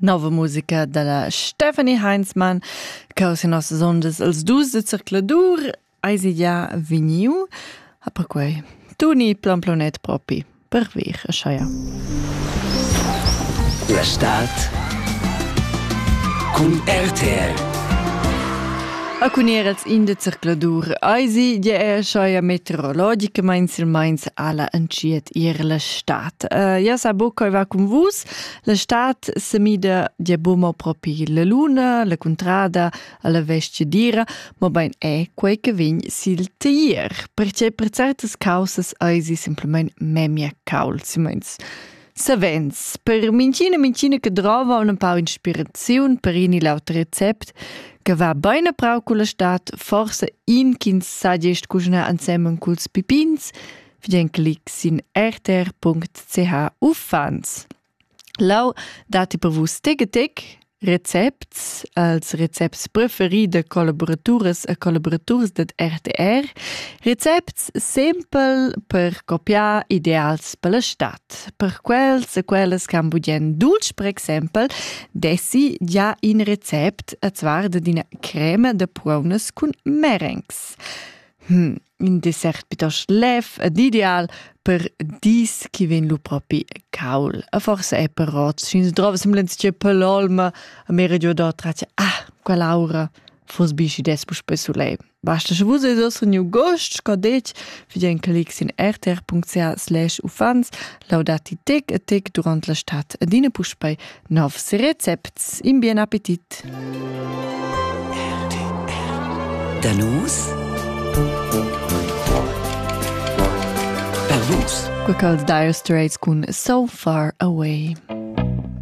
Nova musica dalla Stephanie Heinzmann cau se nossas ondas els dus de circladur eisi ja vegniu ha perquei Tuni plan planet propi per vir a Scheier. La Stadt cun RTR A cun er els in de zercladur eisi gie er scheuia meteorologicamain silmeins alla entschiet ir la stat. Uh, ja sa bo coi va cun vus, la stat semida gie bo mo propi la luna, la contrada, alla vestge dira, mo bein è quei che vegn sil tier, perché per certas causas eisi simplement memia caul, simeins Savens, per minchina minchina che drova ün pau inspiraziun per in il auter recept, che va bain prau culla stat, forsa in ch'ins sa gest cuschnar ensemen culs pipins, vegn clic sin rtr.ch uffants. Lau datti per vus teg e teg? Recepts als recepts preferis da collaboraturas e collaboraturs dad RTR. Recepts simpel per copiar ideals per la stat. Per quels e quellas che han budien dulci, per exempel, dessi già in recept, e zwar da dina crema da prunas cun merengs. Hm, ün dessert pitost lev ed ideal per dis chi vegn lu propi caul. E forse è però sün drova semblants che per l'olma a me radio da trace ah, quell'aura fos bi schi des spe sulei. Basta sche vus eis ossa new gost, co detg, vi den clicks in rtr.ca slash ufans, laudati tec e tec durant la stat e dine puspei Novs recepts in bien appetit. Da nus Per vus. Quecals dire straits cun So Far Away.